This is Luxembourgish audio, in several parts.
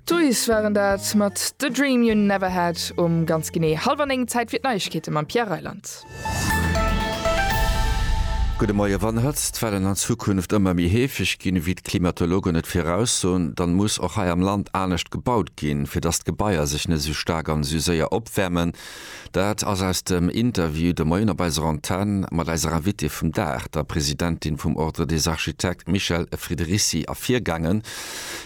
D'Toys waren dat mat The Dream You Never Had um ganz genee hallwer 9, Zäit fir d'Neiegkeete mam Pierre Reyland. Gudde Moie, Wann Hëtztwellen an Zukunft ëmmer méi heefeg ginn, ewéi d'Klimatologen et viraussoen, dann muss och hei am Land anescht gebaut ginn, fir dass d'Gebaier sech net esou staark an esou séier opwäermen. Dat ass aus dem Interview de Moien op eiser Antenn mat eiser Invitée vum Dag, der Presidentin vum Ordre des Architectes Michèle Friederici ervirgaangen.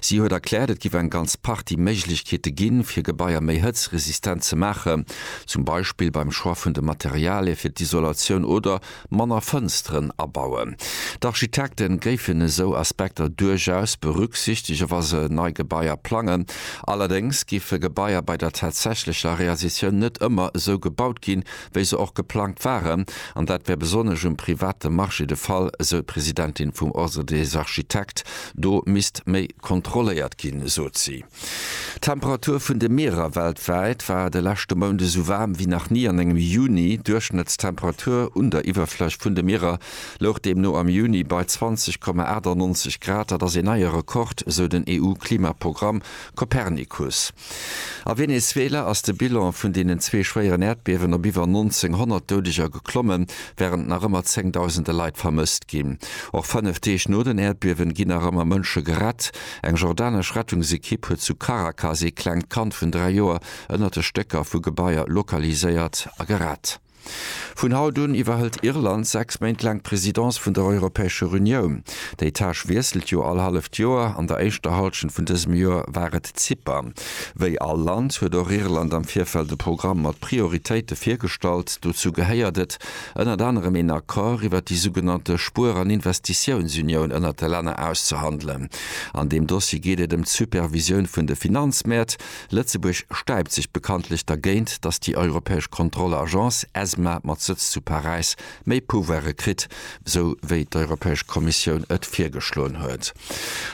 Si huet erkläert, et géif eng ganz Partie Méiglechkeete ginn, fir Gebaier méi hëtzresistent ze maachen, zum Beispill beim Choix vun de Materialie fir d'Isolatioun oder, Manner Fënsteren abauen. D'Architekte géifen esou Aspekter duerchaus berücksichtege wa se nei Gebaier plangen. Allerdéngs géife Gebaier bei der tatsächlecher Realisatioun net ëmmer esou gebaut ginn, wéi se och geplangt waren. An dat wär besonnesch um private Marché de Fall, esou d'Presidentin vum Ordre des architectes. Do misst méi kontrolléiert ginn, sot si. D'Temperatur vun de Mierer weltwäit war de leschte Mount esou waarm wéi nach ni an engem Juni. D'Duerchschnëttstemperatur un der Iwwerfläch vun de Mierer louch deemno am Juni bei 20,98 Grad. Dat ass een neie Rekord, esou den EU-Klimaprogramm Copernicus. A Venezuela ass de Bilan vun deenen zwee schwéieren Äerdbiewen op iwwer 1.900 Doudeger geklommen, wärend nach ëmmer zéngdausende Leit vermësst ginn. Och fënnef Deeg no den Äerdbiewen ginn nach ëmmer Mënsche gerett. Eng jordanesch Rettungsekipp huet zu Caracas ee klengt Kand vun 3 Joer ënnert de Stécker vu Gebaier lokaliséiert a gerett. Vun haut un iwwerhëlt Irland 6 Méint laang d'Presidence vun der Europäescher Unioun. Déi Tâche wiesselt jo all halleft Joer. An der éischter Hallschent vun dësem Joer war et Zypern. Wéi all Land huet och Irland am Virfeld e Programm mat Prioritéite virgestallt. Dozou gehéiert et, ënnert anerem een Accord iwwert déi sougenannte Spuer an Investitiounsunioun ënnert de Länner auszehandelen. An deem Dossier geet et ëm d'Supervisioun vun de Finanzmäert. Lëtzebuerg stäipt sech bekanntlech dergéint, datt déi europäesch Kontrollagence ESMA mat Sëtz zu Paräis méi Pouvoire kritt, esou wéi d'Europäesch Kommissioun et virgeschloen huet.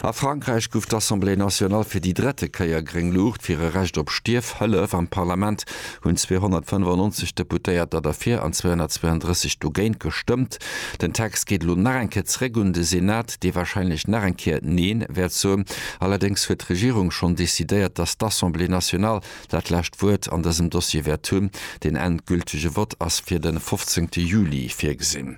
A Frankräich guff d'Assemblée nationale fir déi drette Kéier gréng Luucht fir e Recht op Stierfhëllef. Am Parlament hunn 295 Deputéierter derfir an 232 dogéint gestëmmt. Den Text geet elo nach eng Kéier zréck un de Senat, dee warscheinlech nach eng Kéier Neen wäert soen. Allerdéngs huet d'Regierung schonn decidéiert, datt d'Assemblée nationale dat lescht Wuert an dësem Dossier wäert hunn. Den endgültege Vott ass fir de 15 Juli virgesinn.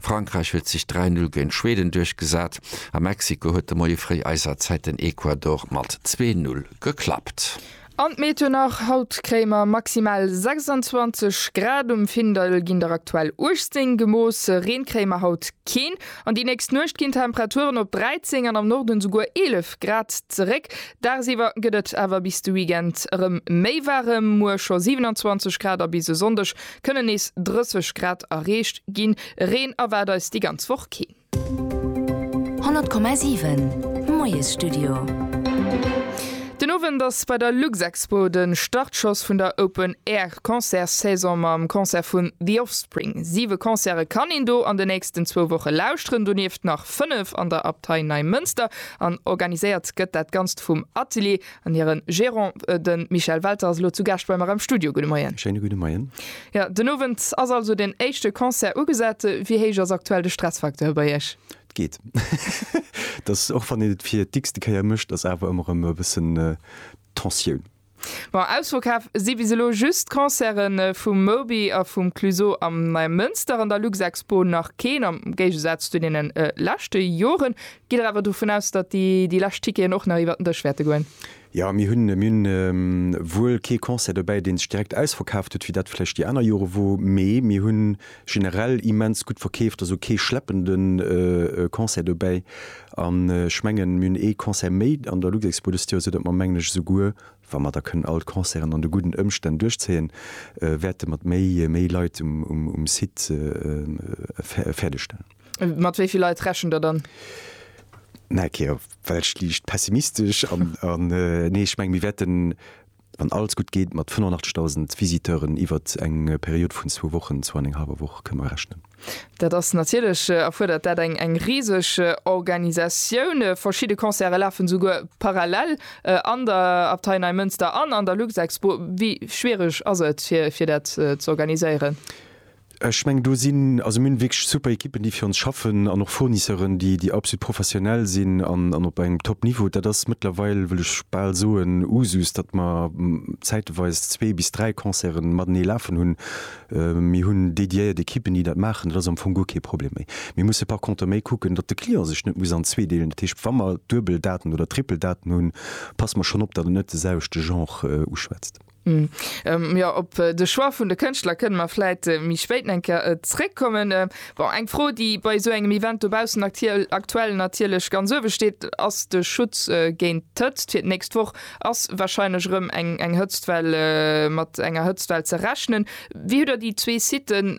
Frankräich huet sech 3 Null géint Schweden duerchgesat a Mexiko huet de Moie fréi eiser Zäit den Ecuador mat zwee Null geklappt. An d'Meteo nach, Haut kréie mer maximal 26 Grad, um Findel ginn der aktuell 18 gemooss. Reen kréie mer haut keen an déi nächst Nuecht ginn d'Temperaturen op 13 an am Norden souguer 11 Grad zeréck. Dagsiwwer gëtt et awer bis de Weekend erëm méi waarem, muer scho 27 Grad a bis e Sonndeg Kënnen nees 30 Grad erreecht ginn. Reen erwaart eis déi ganz Woch keen. 100,7 Moiesstudio. Den Owend ass bei der Luxexpo de Startschoss vun der Open Air Concert Saison mam Concert vun The Offspring. Siwe Concerte kann een do an de nächsten zwou Woche lauschteren, donieft nach fënnef an der Abtei Neimënster. An organiséiert gëtt dat Ganzt vum Atelier An hiren Gérant, den Michel Welter, ass elo zu Gaascht bei mer am Studio. Gudde Moien. Schéine gudde Moien. Jo, den Owend ass also den éischte Concert ugesat. Wéi héich ass aktuell de Stressfacteur bei Iech? Et geet. Et ass, och wann een et fir d'x-te Kéier mécht, ass awer ëmmer erëm e bëssen Tensioun. Bon, ausverkaf si bis elo just d'Concerte vum Moby a vum Clüso am Neimënster an der Luxexpo nach keen, am Géigesaz zu deene leschte Joren. Gitt Der awer dovun aus, datt déi lescht Ticketen och nach iwwert den Dësch wäerte goen? Jo, mir hunn wuel kee Concert dobäi, dee sech direkt ausverkaaft huet, wéi dat vläicht déi aner Jore wor, mee mir hu generell immens gutt verkeeft, also kee schleppende Concert dobäi. An ech mengen, mir hunn ee Concert méi an der Luxexpo dëst Joer, soudatt mer, mengen ech, esouguer wa mer da kënnen all d'Concerten an de gudden Ëmstänn duerchzéien, wäerte mat méi Leit um Site fäerdeg stellen. Mat wéi vill Leit rechent der dann? Na okay, well ech liicht pessimistesch an, an äh, nee, ech meng, mir wäerten, wann alles gutt geet, mat 85.000 Visiteuren iwwert eng Period vun zwou Wochen, zwou an eng hallwer Woch, kënne mer rechnen. Dat ass natierlech, äh, erfuerdert dat eng, eng riseg äh, Organisatioun. Äh, verschidde Concerte lafen esouguer parallel äh, an der Abtei Neimënster an an der Luxexpo. Wéi schwiereg ass et, fir, fir dat äh, z'organiséieren? Ech mengen do sinn, also mir hunn wierklech super Ekippen déi fir ons schaffen an och Fournisseuren déi déi absolut professionell sinn an an op engem top Niveau. Dat ass mëttlerweil, wëll ech bal soen, Usus, datt mer zäiteweis zwee bis dräi Concerten matenee lafen hunn. Mir hunn dédiéiert Ekippen déi dat maachen, dat ass am Fong guer kee Problem méi. Mir musse par contre méi kucken, datt de Client sech net muss an zwee deelen. Dat heescht, wa mer duebel Daten oder triple Daten hunn, passe mer schonn op, datt et net de selwechte Genre uschwätzt. Hm, jo, op de Choix vun de Kënschtler kënne mer vläit méi spéit eng Kéier zréckkommen. Bon, eng Fro, déi bei esou engem Event dobaussen aktuell natierlech ganz uewe steet, ass de Schutz géint d'Hëtzt. Fir d'nächst Woch ass warscheinlech erëm eng Hëtztwell, mat enger Hëtztwell ze rechnen. Wéi hutt Der déi zwee Siten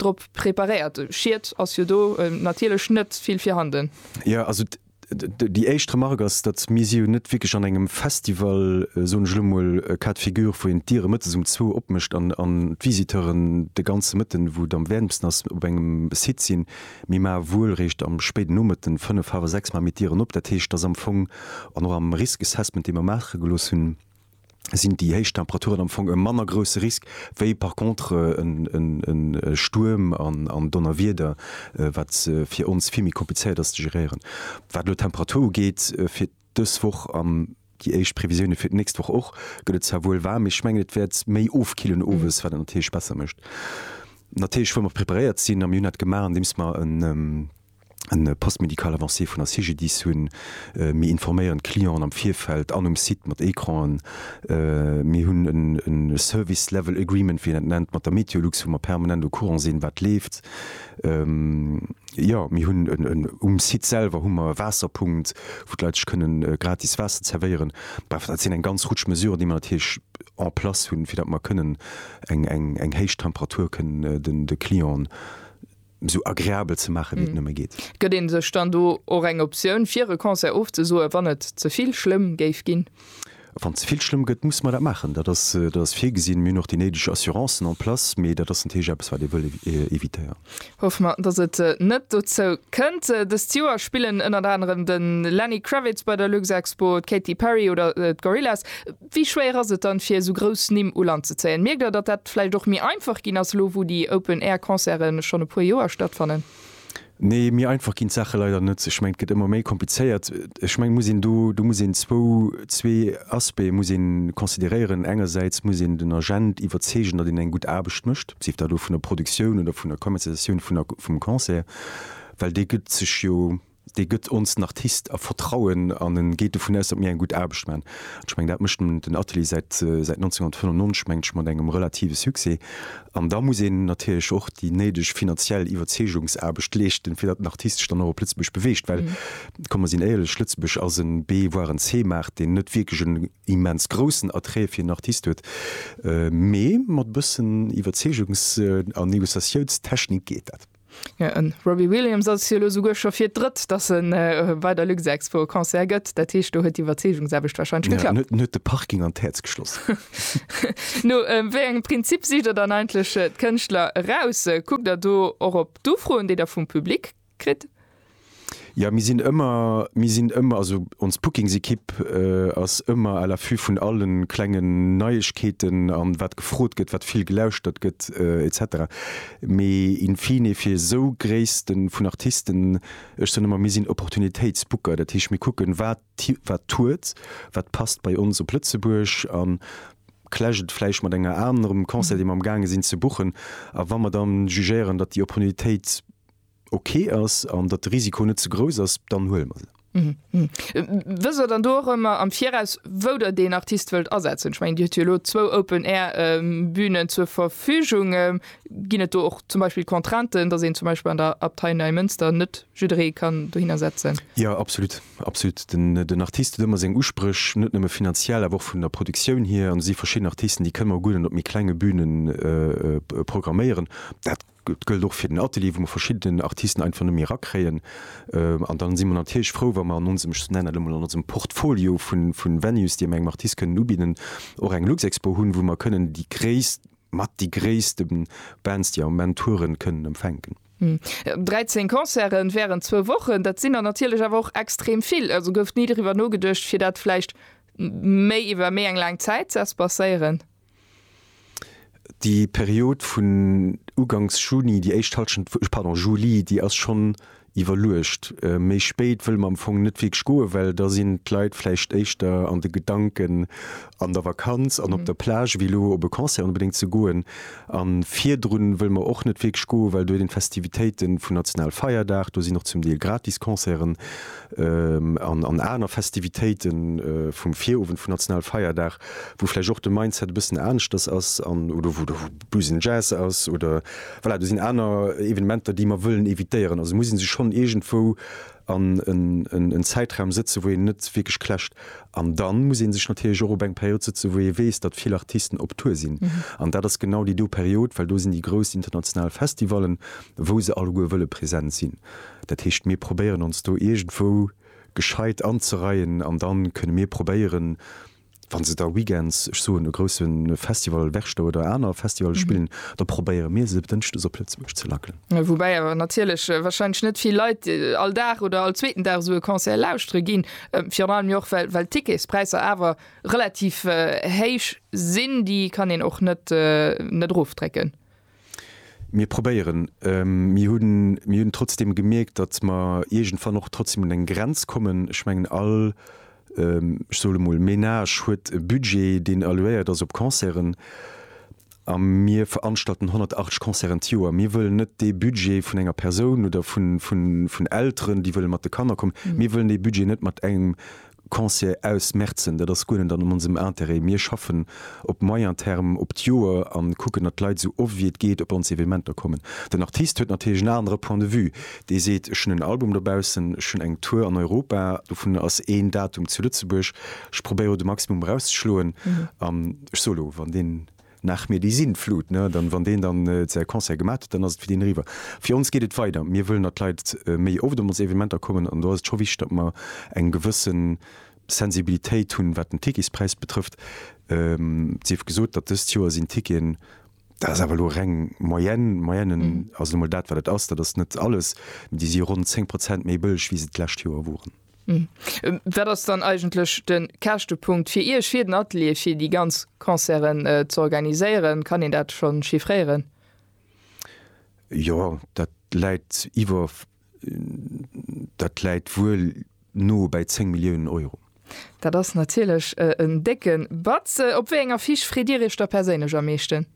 drop preparéiert? Schied ass jo do natierlech net vill virhanden. Jo, also Déi éischt Remark ass, datt mir si jo net wierklech an engem Festival, soen ech elo mol, cas de figure, wou een d'Diere mëttes um zwou opmécht an d'Visiteuren de ganze Mëtten, wou et am wäermsten ass, op engem Site sinn. Mir maache wuel réischt am spéiden Nomëtten, fënnef, hawer sechs, maache mir d'Dieren op. Dat heescht, datt am Fong, an och am Risk Assessment, dee mer maache gelooss hunn, sinn déi héich Temperaturen am Fong e manner grousse Risk wéi par contre e Stuerm an Donnerwieder, wat fir ons vill méi komplizéiert ass ze geréieren. Wat elo d'Temperatur ugeet fir dës Woch an déi éischt Previsioune fir d'nächst Woch och, gëtt et zwar wuel waarm, mee ech mengen et wäert méi ofkillen owes, wat et natierlech besser mécht. Natierlech wëlle mer preparéiert sinn a mir hunn dat gemaach andeems mer en, en Poste médical avancé vun der CGDIS hunn. Mir informéieren d'Clienten am Virfeld an um Site mat Ecranen. Mir hunn e Service Level Agreement, wéi een dat nennt, mat der MeteoLux, wou mer permanent au courant sinn, wat leeft. Jo, mir hunn en, um Site selwer hu mer e Waasserpunkt, wou d'Leit sech kënnen gratis Waasser zerwéieren. Bref, dat sinn eng ganz Rutsch Mesuren, déi mer natierlech en place hunn, fir datt mer kënnen eng héich Temperatur kënnen de Clienten esou agreabel ze maache wéi et nëmme geet. Gëtt ee sech dann do och eng Optioun fir e Concert ofzesoe wann et ze vill schlëmm géif ginn? Wann et ze vill schlëmm gëtt, musse mer dat maachen. Dat ass, dat ass virgesinn. Mir hunn och déi néideg Assurancen en place, mee dat ass natierlech eppes wat ee wëll evitéieren. Hoffe mer, datt et net dozou kënnt. Dëst Joer spillen ënnert anerem de Lenny Kravitz bei der Luxexpo, d'Katy Perry oder d'Gorillaz. Wéi schwéier ass et dann, fir esou grouss Nimm u Land ze zéien? Mierkt der, datt dat vläicht och méi einfach ginn ass, elo wou déi Open Air Concerte schonn e puer Joer stattfannen? Nee, méi einfach ginn d'Saache leider net. Ech mengen, et gëtt ëmmer méi komplizéiert. Ech mengen, et muss een do, do muss een zwou, zwee Aspecte muss ee consideréieren. Engersäits muss een den Agent iwwerzeegen, datt een eng gutt Aarbecht mécht, sief dat elo vun der Produktioun oder vun der Commercialisatioun vun der, vum Concert, well dee gëtt sech jo, dee gëtt ons den Artist a Vertrauen an en geet dovun aus, datt mir eng gutt Aarbecht maachen. An ech mengen, dat mécht den Atelier säit 1995, mengt ech, mat engem relative Succès. An da muss een natierlech och déi néideg finanziell Iwwerzeegungsaarbecht leeschten, fir datt den Artist sech dann och op Lëtzebuerg beweegt. Well, komm, mer sinn éierlech, Lëtzebuerg ass e B-, voire en C-Maart, deen net wierklech en immens groussen Attrait fir en Artist huet. Mee mat e bëssen Iwwerzeegungs a Negociatiounstechnik geet dat. Den Robbie Williams ass jo elo souguer scho fir d'Drëtt, dass e bei der Luxexpo e Concert gëtt. Dat heescht, do huet d'Iwwerzeegungsaarbecht wahrscheinlech geklappt. Ja, en huet de Parking an d'Häerz geschloss. No wéi engem Prinzip sicht Der dann eigentlech d'Kënschtler eraus? Kuckt Der do och op d'Ufroen, déi Der vum Public kritt? Ja, mir sinn ëmmer, mir sinn ëmmer, also ons Bookingsekipp ass ëmmer à l'affût vun alle klenge Neiegkeeten a wat gefrot gëtt, wat vill gelauschtert gëtt et cetera. Mee in fine fir esou Gréisste vun Artisten, ech soen ëmmer, mir sinn Opportunitéitsbooker. Dat heescht, mir kucken, wat wat tourt, wat passt bei ons op Lëtzebuerg a clasht et vläicht mat enger anerem Concert, dee mer am gaange sinn ze boochen. A wa mer dann jugéieren, datt déi Opportunitéit, ok ass an datt de Risiko net ze grouss ass, dann huele mer se. Wësst der dann do och ëmmer am Viraus, wou der deen Artist wëllt asetzen? Ech mengen, Dir hutt jo elo zwou Open-Air-Bünen zur Verfügung. Ginn et do och zum Beispill Contrainten, datt een zum Beispill an der Abtei Neimënster net jidderee kann dohinner setzen? Jo, absolut. Absolut. Den Artist huet ëmmer seng Uspréch, net nëmme finanziell, awer och vun der Produktioun hier. An et si verschidden Artisten, déi kënne mer guer net op méi klenge Bünen programméieren. Dat. Dat gëllt och fir den Atelier, wou mer verschidden Artisten einfach net méi erakréien. An dann si mer natierlech frou, wa mer an onsem, ech nennen dat elo mol, an onsem Portfolio vu Venues, déi mer engem Artist kënnen ubidden, och eng Luxexpo hunn, wou mer kënnen déi gréisst, mat déi gréisste Bands, déi am Moment touren, kënnen empfänken. 13 Concerte wärend zwou Wochen, dat sinn der natierlech awer och extrem vill. Also gouf ni driwwer nogeduecht, fir dat vläicht méi iwwer méi eng laang Zäit ze espacéieren? Déi Period vun ugangs Juni, déi éischt Hallschent, pardon, Juli, déi ass schonn iwwerluecht. Méi spéit wëlle mer am Fong net wierklech goen, well da sinn d'Leit vläicht éischter an de Gedanken an der Vakanz an op der Plage wéi elo op e Concert onbedéngt ze goen. A virdrun wëlle mer och net wierklech goen, well do sinn d'Festivitéite vun Nationalfeierdag, do sinn och zum Deel gratis Concerten. an aner Festivitéite vum Virowend vun Nationalfeierdag, wou vläicht och de Mindset e bëssen aneschters ass an oder wou de Busen Jazz ass oder voilà, do sinn aner Evenementer, déi mer wëllen evitéieren. Also muss ee sech schonn iergendwou an en Zäitraum sëtzen, wou een net wierklech clasht. An da muss ee sech natierlech och op eng Period sëtzen, wou ee weess, datt vill Artisten op Tour sinn. An dat ass genau déi do Period, well do sinn déi grouss international Festivallen, wou se alleguer wëlle present sinn. Dat heescht, mir probéieren ons do iergendwou gescheit anzereien an da kënne mir probéieren, wa se da weekends, ech soen, e grousse Festival, Werchter oder aner Festivalle spillen, da probéiere mir se dënschdes op Lëtzebuerg ze lackelen. Woubäi awer natierlech warscheinlech net vill Leit all Dag oder all zweeten Dag esou e Concert lauschtere ginn, virun allem jo och well d'Ticketspräisser awer relativ héich sinn, déi kann een och net net erofdrécken. Mir probéieren. Mir hunn, mir hunn trotzdeem gemierkt, datt mer iergendwann och trotzdeem un eng Grenz kommen. Ech mengen, all, ech soe mol, Menage huet e Budget, deen allouéiert ass op Concerten. A mir veranstalten 180 Concerten d'Joer. Mir wëllen net dee Budget vun enger Persoun oder vun Elteren, déi wëlle mat de Kanner kommen, mir wëllen dee Budget net mat engem Conseiller aus Mertzen, Dat ass guer net an onsem Intérêt. Mir schaffen op moyen terme, op d'Joer a kucken, datt d'Leit esou oft wéi et geet op ons Evenementer kommen. Den Artist huet natierlech en anere Point de vue. Dee seet, Ech hunn en Album dobaussen, ech hunn eng Tour an Europa, dovun ass een Datum zu Lëtzebuerg, ech probéiere elo de Maximum erauszeschloen an ech soe elo, wann deen, Nach mir déi Sintflut, ne? Dann, wann deen dann säi Concert gemat huet, dann ass et fir deen eriwwer. Fir ons geet et weider. Mir wëllen, datt d'Leit méi oft op ons Evenementer kommen an do ass et scho wichteg, datt mer eng gewësse Sensibilitéit hunn, wat den Ticketspräis betrëfft. Et sief gesot, datt dëst Joer sinn d'Ticketen, dat ass awer elo reng Moyenne, Moyenne ass nu mol dat wat et ass, dat ass net alles, déi si ronn 10 Prozent méi bëlleg wéi se d'lescht Joer woren. Hm. Wat ass dann eigentlech de Käschtepunkt fir Iech, fir den Atelier, fir déi ganz Concerten äh, ze organiséieren? Kann een dat schon chiffréieren? Jo, dat läit iwwer dat läit wuel no bäi 10 Milliounen Euro. Dat ass natierlech äh, en décke Batz. Op wéi eng Affiche freet Dir Iech da perséinlech am meeschten?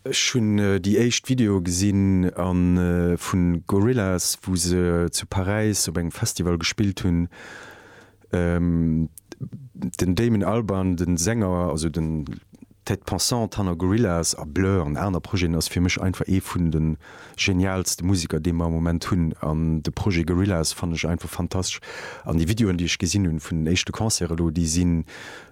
Ech hun déi éischt Video gesinn an vun Gorillaz wou se zu Paräis op engem Festival gespillt hun. Den Damon Albarn, den Sänger, also den tête pensante hanner Gorillaz a Blur an aner Projeten ass fir mech einfach ee vun den genialste Musiker dee mer am Moment hunn an de Projet Gorillaz fannen ech einfach fantastesch an déi Videoen déi ech gesinn hunn vun den éischte Concerte elo déi sinn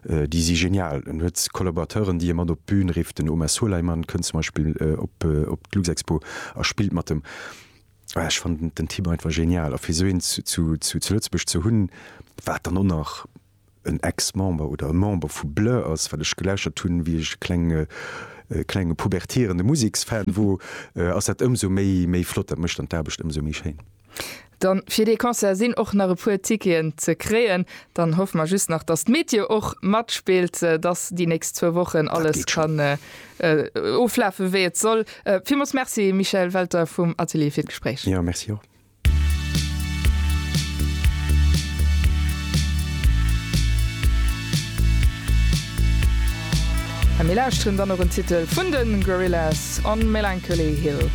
déi si genial. En huet Collaborateuren déi e mat op d'Bün rifft, den Omer Suleiman kënnt zum Beispill op op d'Luxexpo a spillt mat em. Ech fannen den Typ einfach genial a fir esou een zu zu zu Lëtzebuerg ze hunn wat dann och nach en Ex-Member oder e Member vu Blur ass, wat ech gelauschtert hunn, wéi ech e klenge klenge pubertierende Museksfan wor, ass dat ëmsou méi méi flott. Dat mécht dann d'Aarbecht ëmsou méi schéin. Dann fir dee Concert sinn och nach e puer Ticketen ze kréien. Dann hoffe mer just nach, dass d'Meteo och matspillt, dass déi nächst zwou Wochen alles kann oflafen, wéi et soll. Villmools Merci Michel Welter vum Atelier fir d'Gespréich. Jo, Merci och. A mir lauschteren dann och en Titel vun de Gorillaz, On Melancholy Hill.